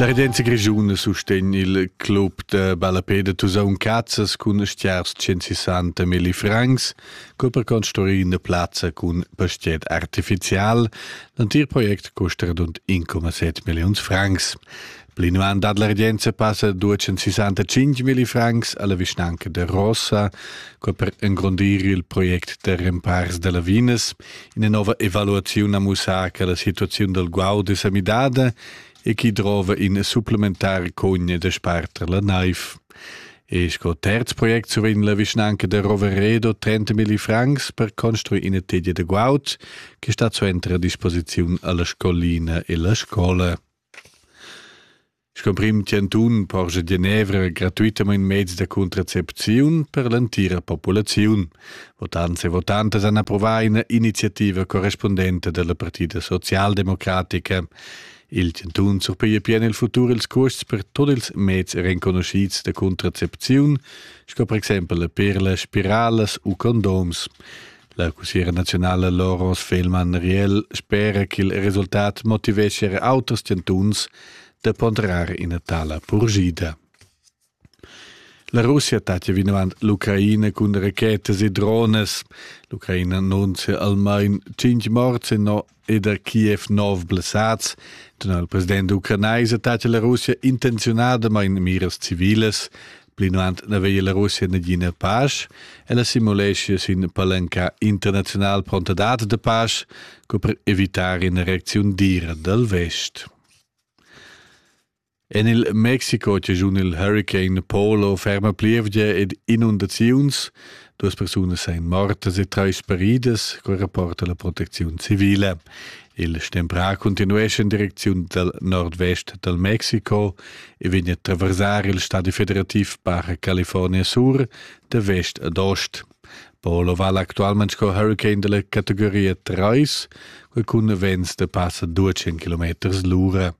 La regenza grischuna sustegn il club da ballapeda Tusaun Cazzas cun stiars 160 milli francs, co per construir una plazza cun pastiet artificial. L'antir project costa radund 1,7 millions francs. L'inuan dad la regenza passa duecen 65.000 francs alla vischnanca de Rossa, co per engrondir il project de rempars de lavinas, ina nova evaluazione a mussar che la situazione del guaud è samidada e chi drova in supplementare cogne de sparter la naiv. E sco terz project survegn la vischnanca de Roveredo 30.000 francs per construire ina teglia de guaud che sta suenter a disposizione alla scolina e la scola. Sco prim chantun porscha Genevra gratuitamain meds da contracepziun per l'entira populaziun. Votants e votantas han approvà ina iniziativa correspundenta dalla Partida socialdemocratica. Il chantun surpiglia pien il futur ils custs per tot ils meds renconuscids da contracepziun, sco per exempel per las spiralas u condoms. La cussiera naziunala Loros Fehlmann Riel spera ch'il resultat motivescha er auters chantuns da ponderar ina tala purgida. La Russia tattia vinavant l'Ucraina cun rachetas e dronas. L'Ucraina annunzia almain cinc morts e no e da Kiev nov blessads, dunna il president ucranais attacca la Russia intenziunadamain miras civilas, plinant n'aveva la Russia nagina pace, e la simulescia sin palanca internazional prontadad de pace co per evitar ina reacziun dira dal vest. En il Mexico chaschun il huricane Polo ferma plievgia ed inundaziuns. Duas persunas èn mortas e trais peridas, quai rapporta la protecziun civile. Il stemprà continuescha en direcziun dal nordvest dal Mexico e vegn a traversar il stadi federativ Baja California Sur da vest ad ost. Polo vala actualmente sco huricane della categoria 3, quei cun vents de passa 200 km l'ura.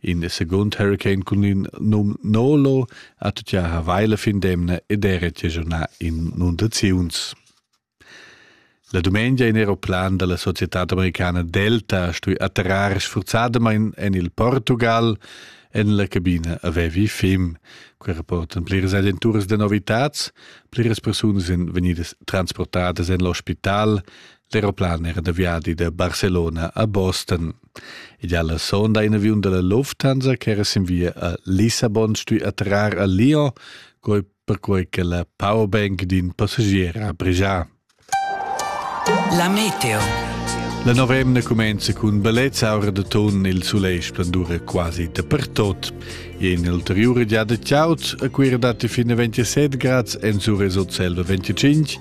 In de secund hurricane cun in num Nolo ha tutgia ha vaila fin demna ed era giagiunà inundaziuns. La dumengia in aeroplan dalla societad americana Delta stui atterrar sfurzadamain en il Portugal en la cabina avevi fim. Quei rapportan pliras agenturas de novitads, pliras persunas in vegnidas transportadas en l'ospital. L'aeroplan era da viadi da Barcelona a Boston. Ed alla sonda in aviun dalla Lufthansa ch'era sin via a Lissabon stui attrar a Lyon, quei perquei che la powerbank d'in passagier ha bregia. La meteo. La novemna cumenza cun ballets aura de ton il soleil splendura quasi dapertot. E in ulteriura giada ciao a Cuira dati fin a 27 grads en su resot selva 25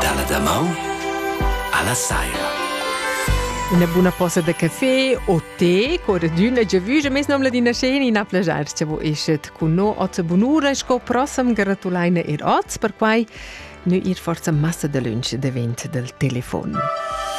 Dalla damaun alla saira. Una buna posa de caffé o tè corredüna già vüja mes nom ladina scena in a plagiar che vo eschet cun no ot bunura sco prossam gratulaina er ots per quai nu ir forza massa de lunch davent del telefon.